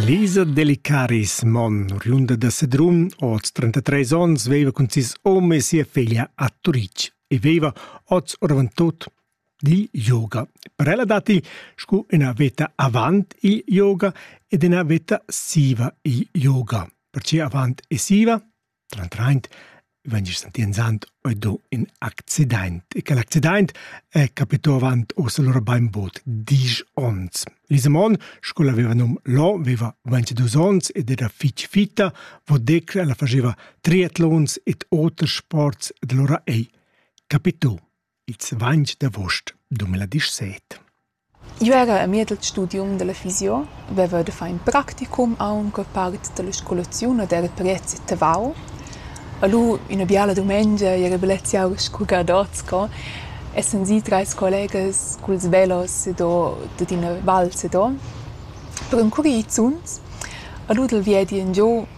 Lisa Delicaris, mon, oriunda da Sedrun, oz 33 onns, veva cun sis hom e sia feglia a Turitg e veva oz oravantut il yoga. Per ella datti sco ina veta avant il yoga ed ina veta siva il yoga. Pertge avant e siva? Trantraint vegn sentì enzant oi do ün accidaint e quel accidaint è capitò avant uossa lura bainbod diesch ons. Lisemon, sco'l aveva nom Lò, veva 22 ons ed era fich fitta, vo decler ella fascheva triatlons ed oters sports ed lura ei capitò. Ils vainch d'avost 2017. Eu era amiez al studium da la fisio, veva da far ün practicum aunc a part da la scolaziun ed era prez e tavau. Alura üna biala dumengia era bellezia aur scu gadots co, essan sii trais collegas culs velos ed ho dad üna val set o per ün curizuns. Alura dal viedi ingiò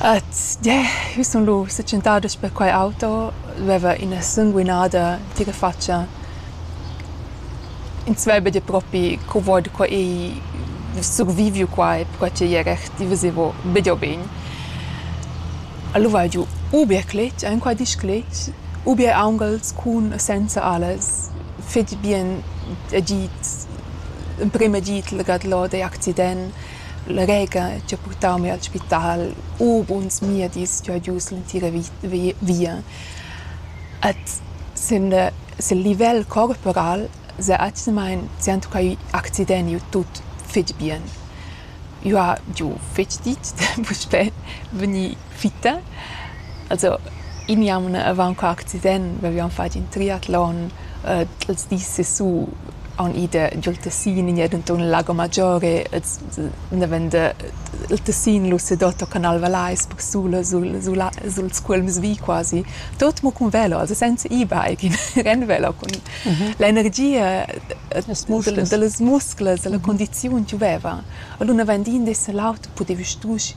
At yeah, jeu sun lu setschentada sper quei auto, lu veva ina sunguinada tga fatscha. Ins veva dir propi co vo da qua e vus surviviu quai perquai ch'ei era recht, i veseva bia bein. Lu vai giu ubier cletg, enqual disch cletg, ubier aunghels cun e senza alles, fetg bien agid, emprem agid legat lod egl accident. La rega chi ha purtau mi al spital u buns miedis chi ho giu l'entira via. Ed sin sil livel corporal s'ha atgnamaing tschientucai accideniu tut fich bien. Eu ha giu fich ditg da puspè vegnir fitta. Also in jaun avant qua accident vevian fatg in triatlon äh, els dis sesù haun ida giul Tessin in denton Lago Maggiore els nevende il Tessin lu sedotto Canal Valais per sula sul sul sul scuolms vi quasi tot mo cun velo also senza e-bike in rennvelo con mhm. l'energia delle muscles la mhm. condizione gioveva allora vendin de se l'auto potevi strusch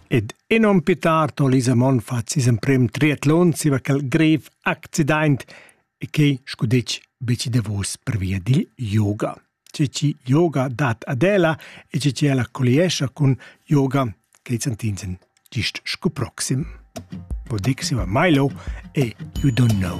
Ed enom pü tard ho Lisa Monfart sis emprem triatlon zieva quel grev accidaint e que scu detg be chi davos pervia dil yoga. Che chi yoga dat ad ella e che chi ella colliescha cun yoga che Santinsen gist scu proxim. Podix va Milo e You Don't Know.